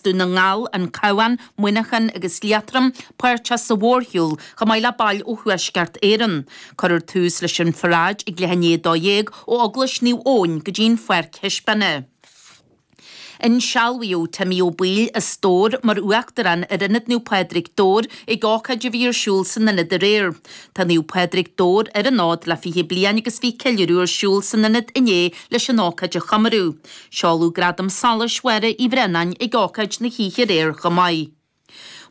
Dún na nGall, an Cabhán, Muineachán agus Liatroma páirteach sa mhórshiúl, chomh maith le baill ó Thuaisceart Éireann. Cuireadh tús leis an pharáid ag leath i ndiaidh a dó dhéag ó Eaglais Naomh Eoin go dtí an Pháirc Thaispeána. Insealbhaíodh Timmy Ó Baoill, a stór, mar Uachtarán ar Ionad Naomh Pádraig, Dobhair, ag ócáid a bhí ar siúl san Ionad aréir. Tá Naomh Pádraig, Dobhair, ar an fhód le 20 bliain agus bhí ceiliúradh ar siúl san Ionad inné leis an ócáid a chomóradh. Seoladh Gradam Solais Mháire Uí Bhraonáin ag ócáid na hoíche aréir chomh maith.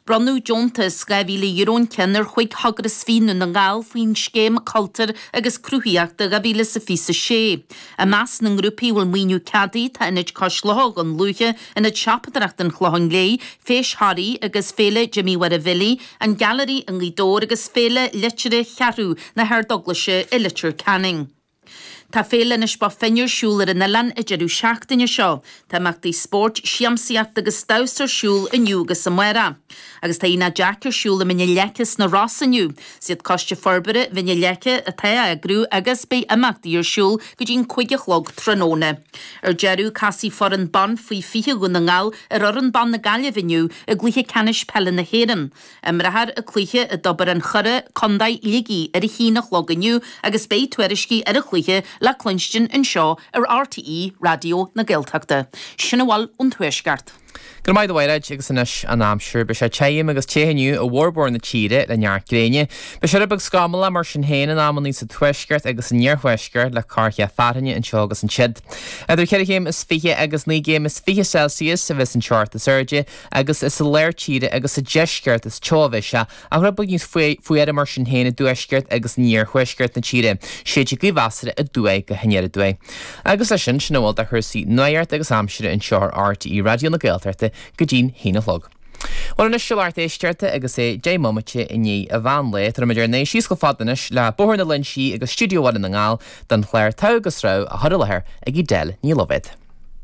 Bronnadh deontas €2,000 an ceann ar chúig eagras i nDún na nGall faoin scéim Cultúr agus Cruthaitheachta 2026. I measc na ngrúpaí a bhfuil maoiniú ceadaithe tá Ionad Cois Locha Dhún Lúiche, Ionad Teampall Chróine an Chlocháin Léith, Feis Thoraí agus Féile Jimmy Mháire Bhilly, An Gailearaí i nGaoth Dobhair agus Féile Liteartha Cheathrú na hArdeaglaise i Leitir Ceanainn. Tá Féile Inis Bó Finne ar siúl ar an oileán an deireadh seachtaine seo. Tá imeachtaí spóirt, siamsaíocht agus damhsa ar siúl inniu agus amárach. Agus tá Aonach Jack ar siúl i Mín na Leice sna Rosa inniu. Is iad Coiste Forbartha Mhín na Leice atá á eagrú agus beidh imeachtaí ar siúl go dtí an cúig a chlog tráthnóna. Ar deireadh, casfaidh foireann ban faoi 20 Dhún na nGall ar fhoireann ban na Gaillimhe inniu i gcluiche ceannais peile na hÉireann. imreofar an cluiche i dTobar an Choire, Co Shligigh ar a haon a chlog inniu agus beidh tuairiscí ar an chluiche le cluinstin anseo ar RTÉ Raidió na Gaeltachta. Sin a bhfuil ón Tuaisceart. Go raibh maith agat a Mhairéid, agus anois an aimsir. Beidh sé tirim agus te inniu i bhformhór na tíre le neart gréine. Beidh sé rud beag scamallach mar sin féin in amannaí sa tuaisceart agus san iarthuaisceart le corrcheath fearthainne anseo agus ansiud. Idir ceithre chéim is fiche agus naoi gcéim is fiche Celsius a bheidh san teocht is airde agus is i lár tíre agus sa deisceart is teo a bheidh sé, ach rud beag níos fuaire mar sin féin i dtuaisceart agus in iarthuaisceart na tíre. Séidfidh gaoth mheasartha aduaidh go haniar aduaidh. Agus leis sin, sin a bhfuil de chúrsaí nuachta agus aimsire anseo ar RTÉ Raidió na Gaeltachta go dtí'n haon a chlog. Bhuel anois, a lucht éisteachta agus é deich mbomaite i ndiaidh a mheánlae, tabharfaimid ár n-aghaidh síos chomh fada anois le Bóthar na Léinsí agus Stiúideo Bhaile na nGall don chlár Togha agus Rogha á chur i láthair ag Edel Ní Loibhéad.